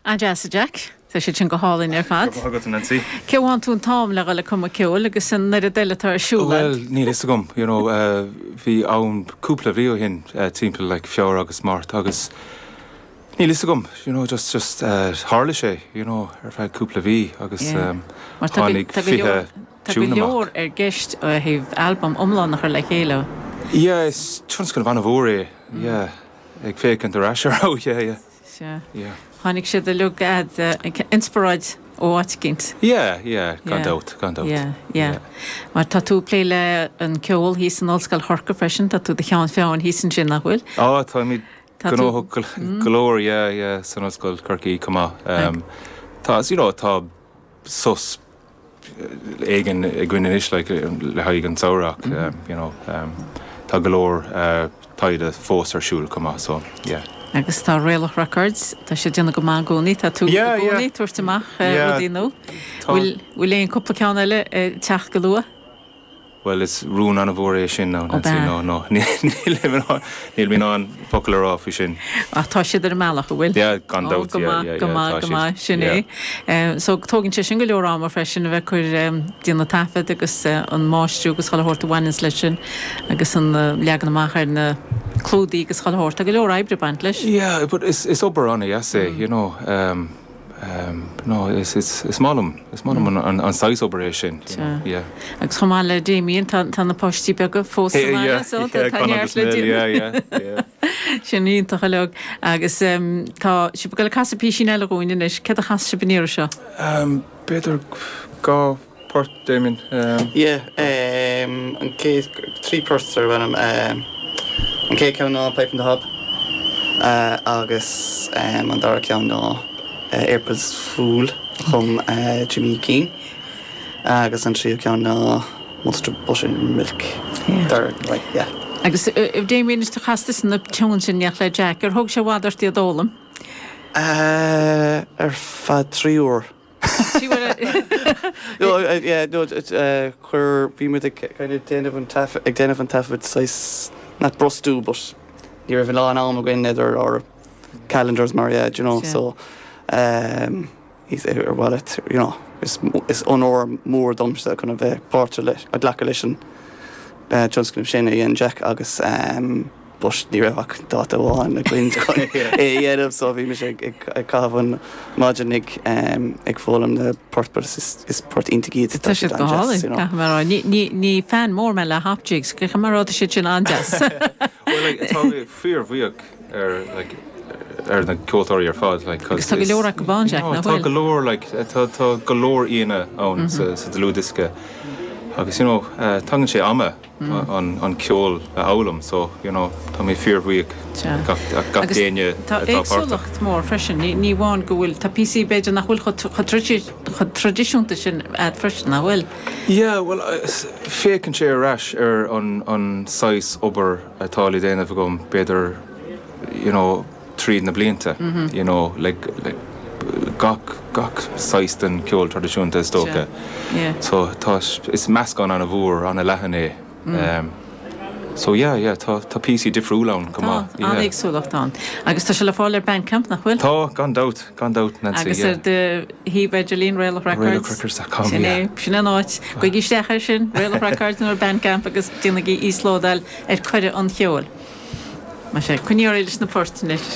An deas a Jack? Tá siad sin go hálainn ar fad. Comhghairdeas leat, a Nancy. Cá bhfaigheann tú an t-am le dhul ag cumadh ceoil agus an oiread eile atá ar siúl agat? Bhuel, níl a fhios agam. You know, bhí am cúpla mhí ó shin, timpeall like Feabhra agus Márta agus níl a fhios agam, you know, just, just tharla sé, you know, ar feadh cúpla mhí agus tháinig fiche tiún amach. Mar tá go leor i gceist ó thaobh albam iomlán a chur le chéile. Yeah, is tionscnamh an-mhór é, yeah. ag féacaint ar ais ar fheabhas, yeah, yeah. Sea. Yeah. Tháinig siad uilig chugat, eh, inspioráid ó áit eicínt. Yeah, yeah, gan Yeah. dabht, gan dabht. Yeah, yeah. Yeah. Mar tá tú ag plé le an ceol thíos in Ollscoil Chorcaí freisin, tá tú i do cheann feadhna thíos ansin, nach bhfuil? Á, táimid Tá tú- gnóthach go, Mm. go leor, yeah, yeah, san Ollscoil Chorcaí comh maith. Right. Ehm, tá, as you know, tá sos éigin againn anois le haghaidh an tsamhraidh you know tá go leor taighde fós ar siúl chomh maith so yeah. Agus tá Raelach Records, tá siad ag déanamh go maith i gcónaí, tá tú i gcónaí, tabhairt amach rudaí nó bhfuil aon cúpla ceann eile ag teacht go luath? Bhuel, is rún an-mhór é sin, a Ó, Nancy. ab ea? Ná, ná, níl mé in ann focal a rá faoi sin. Ach tá siad ar an mbealach, an bhfuil? Yeah, gan Ó, dabht, go yeah, maith, yeah, go yeah, maith, tá go siad, maith. Sin é. yeah. Eh, so tógann sé sin go leor ama freisin a bheith ag cur em, déanamh taifead agus eh, an máistriú agus chuile shórt a bhaineanns leis sin agus an eh, leagan amach ar na clúdaigh agus chuile shórt. Tá go leor oibre ag baint leis. Yeah, but is, is obair an-dheas é, you know. em. No, is maith liom, is maith liom an saghas obair é sin, you know, yeah. Agus chomh maith le Damien, tá na páistí beaga fós sa mbaile, so tá neart le déanamh. Yeah, yeah, yeah, yeah, yeah. Sin iontach uilig. Agus tá sibh ag goil ag casadh písín eile dhúinn anois. Céard a chasfaidh sibh an iarraidh seo? B'fhéidir dhá phort, Damien. Ye, an chéad, trí ports darb ainm, an chéad ceann ná Pipe on the Hob agus an dara ceann ná April's Fool, a chum Jimmy Keane, agus an tríú ceann ná Munster Buttermilk, dar ndóigh, yeah. Agus Damien, is casta iad na tiúin sin, nach le Jack, ar thóg sé i bhfad ort iad a fhoghlaim? Ar feadh trí uair. Sea bhuel i. Yeah no chuir bhí muid ag kind of déanamh an taifead ag déanamh an taifead saghas not brostú but ní raibh a lán am againn idir ár calendars mar yeah do you know so um he's ar mhaith leat you know is is onóir mór domsa kind of bheith páirt a ghlacadh leis an tionscnamh sin a dhein Jack agus um. But ní raibh ach dáta amháin againn chun é a dhéanamh so bhí mise ag caitheamh an maidin ag foghlaim na bport but is poirt iontach iad so tá siad an-deas you know. Ní fan mór mé de hop jigs ach mar a déarfá tá siad sin an-deas. Bhuel like tá mé fíor-bhuíoch ar like ar na ceoltóirí ar fad like cos tá go leor acu ann Jack nach bhfuil? Tá go leor like tá tá go leor aíonna ann sa dlúthdhiosca agus you know tagann sé ama an ceol a fhoghlaim so you know tá mé fíor bhuíoch gach gach d'éinne atá páirteach. Tá éagsúlacht mór freisin ní ní amháin go bhfuil tá píosaí b'fhéidir nach bhfuil chomh chomh chomh tradisiúnta sin agat freisin nach bhfuil? Yeah bhuel féachann sé ar ais ar an an saghas obair atá á dhéanamh agam b'fhéidir you know, tríd na blianta you know like gach gach saghas de cheol traidisiúnta is dócha so tá is meascán ana mhór ana leathan é ehm so yeah yeah tá tá píosaí difriúla ann go maith yeah tá éagsúlacht ann agus tá sé le fáil ar Bandcamp nach bhfuil? Tá gan dabht gan dabht Nancy yeah agus ar do shuíomh idirlín Raelach Records sin é sin an áit gabhaigí isteach ar sin Raelach Records nó Bandcamp agus déanaigí íoslódáil ar cuireadh an cheoil. Coinneoidh muid leis na poirt anois.